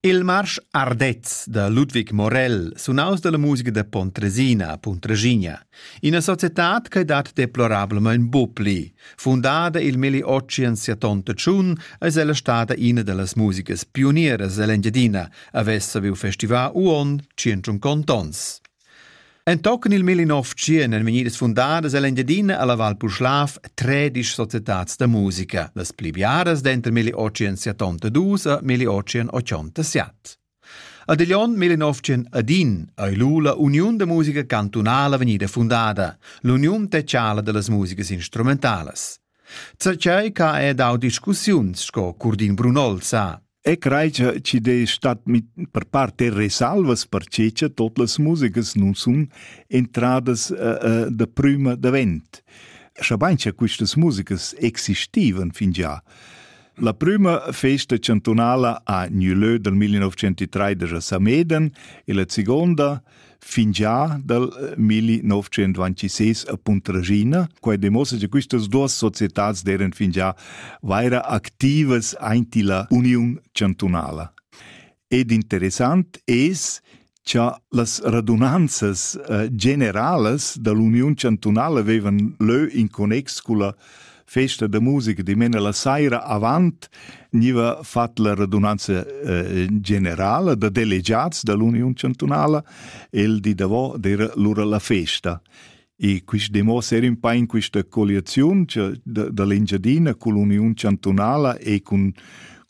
Il marsch Ardez da Ludwig Morell, sunaus dalla musica da Pontresina, Puntregina, ina societad che dat deplorablamein bu pli. Fundada il Milli Ocean siatonta tschun, eis ella stada ina dallas musicas pionieras ell'Engiadina, havess saviu festivar uon 150 ons. Entochen il millenovetschien ein vegnidas fundadas ell'Engiadina alla Val Puschlav tredisch societads da musica, las pli biaras denter 1872 e 1887. Ad Glion 1901 ei l'ULA Uniun da musica cantunala vegnida fundada, l'uniun teatrala dallas musicas instrumentalas. Zatgei che ha dau discussiuns sco Curdin Brunol sa. E crei che ci de stat mit per parte resalvas perché che tot las musigas nun sun entradas uh, uh, da prima davent. Schabain che quistas musigas existivan fin già. La prima festa chantunala a Nulö dal 1903 a Sameden e la seconda fingià dal 1926 a Puntraschina. Quai demossa che quistas duas societats d'eran fingià vaira activas aint illa Uniun Chantunala. Ed interessant es cha las radunanzas eh, generalas da l'Uniun Chantunala vevan lö in connex culla festa da musica dimena la saira avant niva fat la radunanza eh, generala da delegiats dall'Union Chantunala el di davo d'era lura la festa. E quist demo ser in pa in questa colliazione dall'Engiadina con l'Union Chantunala e con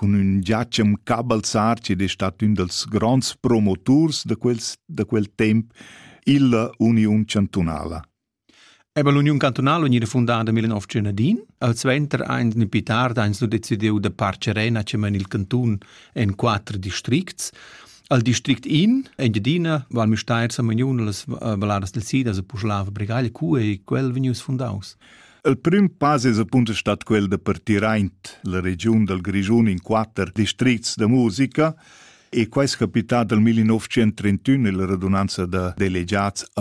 con un Giacem Cabalzar, che è stato un dels grands promotors da, quels, da quel tempo, illa Union Chantunala. Eber l'uniun cantunala gnida fundada nel nov Genadin, al suenter ein ni pli tard ein su decidiu da Parcerena cheman il cantun en quater districts. Al district in, Engiadina, Val Müstair, Samagnun, las valadas del Sida, se puslava Bregaglia, cu ei quel vegnius fundaus? Il prim pass es appunto stat quel da partir aint la regiun dal Grischun in quatter districts da musica e quai è capità dal 1931 nella radunanza da delegats a